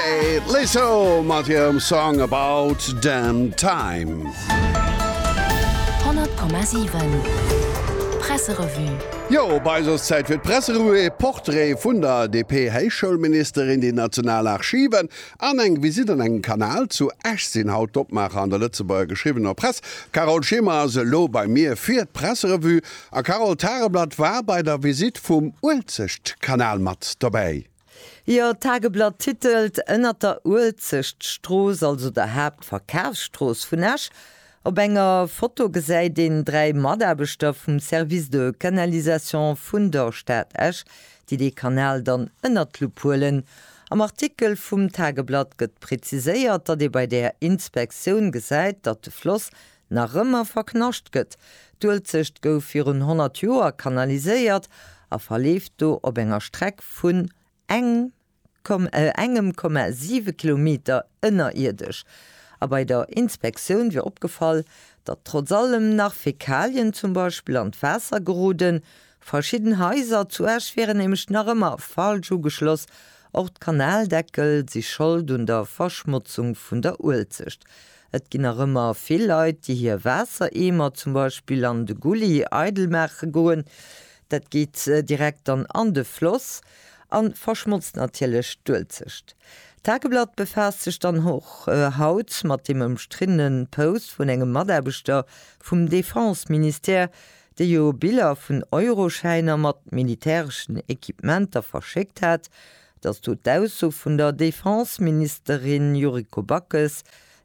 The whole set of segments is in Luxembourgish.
Kate Lee Soul mat hirem Song About Damn Time. 100,7 Presserevue. Jo, bei eis ass Zäit fir d'Presserevue, ee Portrait vun der DP-Héichschoulministerin, déi national Archiven an eng Visitt an engem Kanal zu Esch sinn haut d'Opmaacher an der Lëtzebuerger geschriwwener Press. D'Carole Schimmer ass elo bei mir fir d'Presserevue. A Carole, d'Tageblatt war bei der Visitt vum Uelzechtkanal mat dobäi. Jo, d'Tageblatt titelt, Ënnert der Uelzechtstrooss, also der Haaptverkafsstrooss vun Esch. Op enger Foto gesäit een dräi Mataarbechter vum Service de canalisation vun der Stad Esch, déi dee Kanal dann ënnert d'Lupp huelen. Am Artikel vum Tageblatt gëtt preziséiert, datt ee bei där Inspektioun gesäit, datt de Floss nach ëmmer verknascht gëtt. D'Uelzecht gouf virun 100 Joer kanaliséiert a verleeft do op enger Streck vun eng engem Komma siwe Kilometer ënnerierdesch. A bei der Inspektioun wier opgefall, datt trotz allem nach Fäkalien zum Beispill an d'Waasser geroden. Verschidden Haiser zu Esch wieren nämlech nach ëmmer falsch ugeschloss. Och d'Kanaldeckel si Schold un der Verschmotzung vun der Uelzecht. Et ginn nach ëmmer vill Leit, déi hir Waassereemer zum Beispill an de Gulli eidel maache goen. Dat geet direkt dann an de Floss a verschmotzt natierlech d'Uelzecht. D'Tageblatt befaasst sech dann och haut mat deem ëmstriddene Post vun engem Mataarbechter vum Defense-Ministère, dee jo Biller vun Euroschäiner mat militäreschen Equipementer verschéckt hat, Dass do d'Ausso vun der Defenseministerin Yuriko Backes,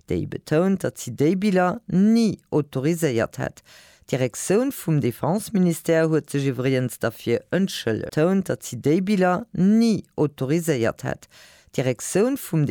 déi betount, datt si déi Biller ni autoriséiert hätt. D'Direktioun vum Defenseministère huet sech iwwregens derfir entschëllegt. Betount, datt si déi Biller ni autoriséiert hätt. D'Direktioun vum.